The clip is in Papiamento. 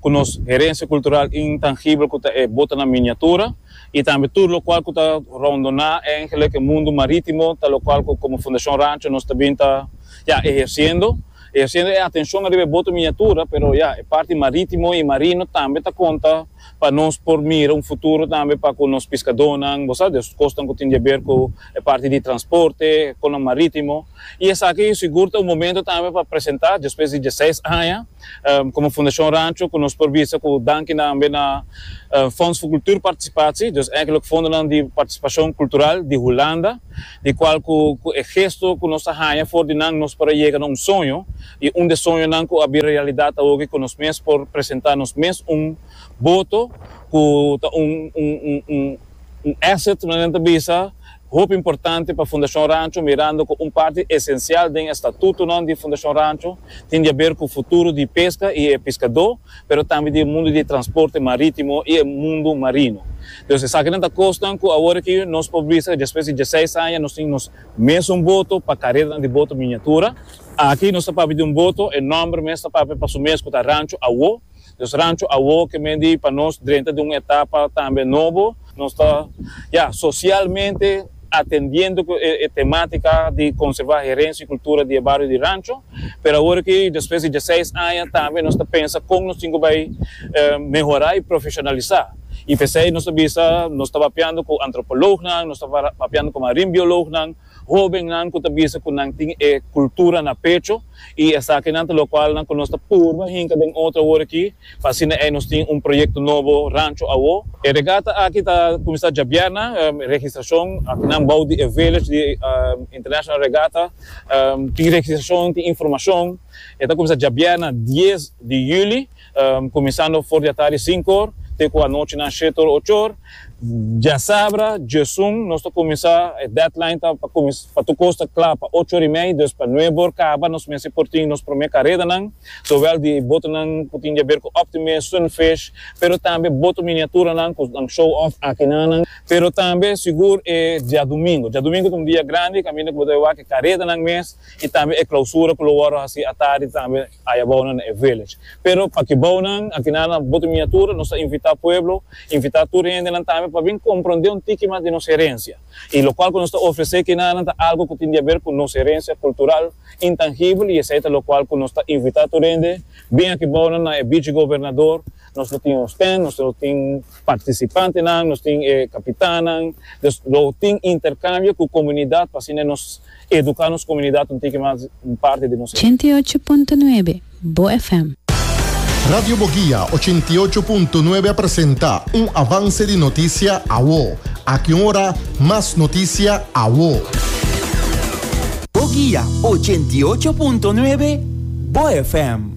ku nos herensia kultural intangibel ku ta e bota na miniatura i tambe tur lokual ku ta roundoná e engelike mundu marítimo ta lokual ku komo Fundashon Rancho nos ta bin ta ya ehersiendo ehersiendo e atenshon ariba e boto miniatura pero ya e parti marítimo i marino tambe ta konta pa nos por mira un futuro tambe pa ku nos piskadónan bo sa des kosnan ku tin di haber ku e parti di transporte e konan marítimo. y esaki tin sigur ta un momento tambe pa presenta despues di diesseis aña como Fundacion Rancho cu nos por bisa cu danki tambe na Fonds fu Cultuur Participatie dus eigenlijk fondonan di participacion cultural di Hulanda di cual cu cu e gesto cu nos ta haña for di nan nos por a yega na un soño y un de soñonan cu a bira realidad ta hogi cu nos mes por presenta nos mes un boto cu ta un un un asset maneran ta bisa. Hopi importante pa Fundacion Rancho mirando cu un parti esencial den e statutonan di Fundacion Rancho tin di haber cu futuro di pesca y e piscador pero tambe di e mundo di transporte maritimo y e mundo marino. Dus esakinan ta cosnan cu awor aki nos por bisa cu despues di diesseis aña nos tin nos mesun boto pa careranan di boto miniatura. Aki nos ta papia di un boto, e nomber mes ta papia pa su mes cu ta Rancho Awor. Nos rancho awor ke men di pa nos drenta di un etapa tambe nobo. Nos ta, ya, sosialmente atendiendo ku e tematika di konservá herensia i kultura di e bario di rancho, pero awor aki despues di diaseis aña tambe nos ta pensa kon nos tin ku bai mehorá i profeshonalisá. I p'esei nos ta bisa nos ta papiando ku antropolognan, nos ta papiando ku marinbiolognan. Hobennan ku ta bisa ku nan tin e kultura na pecho i esakinan ta lokual nan ku nos ta purba hinka den otro awor aki pa asina ei nos tin un proyekto nobo rancho awó. E regata aki ta kuminsá djabièrna. Registrashon aki nan bou di e village di International Regatta tin registrashon, tin informashon. E ta kuminsá djabièrna dies di yüli. Kuminsando for di atari sinkor te ku anochi nan shetor ochor. Diasabra diesun nos ta kuminsá, e deadline ta pa kuminsá pa tur kos ta kla pa ocho or i mei, dus pa nuebe or kaba nos mester por tin nos promé karedanan, sowel di botonan ku tin di aber ku Optimist, Sunfish, pero tambe boto miniaturanan ku nan show off aki nan nan. Pero tambe sigur e diadumingu, diadumingu ta un dia grandi kaminda ku bo ta wak e karedanan mes i tambe e klausura ku lo wòrdu hasi atari tambe. Aya bounan na e village. Pero paki bounan a kina na Bote Miniatura, nos ta invitá pueblo, invitá tur hendenan tambe pa bin komprondé un tiki mas di nos herensia. I lokual ku nos ta ofresé kinanan ta algu ku tin di aber ku nos herensia kultural intangibel i esei ta lokual ku nos ta invitá tur hende, Bin aki bounan na e Bichi Gobernador, Nos lo tin hosten, nos lo tin participantenan, nos tin e capitannan. Dus lo tin intercambio cu comunidad pa asina nos educa nos comunidad un tiki mas un parti di nos. Ochenta i ocho punto nuebe Bo FM. Radio Boguia ochenta i ocho punto nuebe a presenta un avance di noticia awo. Aki un ora mas noticia awo. Boguia ochenta i ocho punto nuebe Bo FM.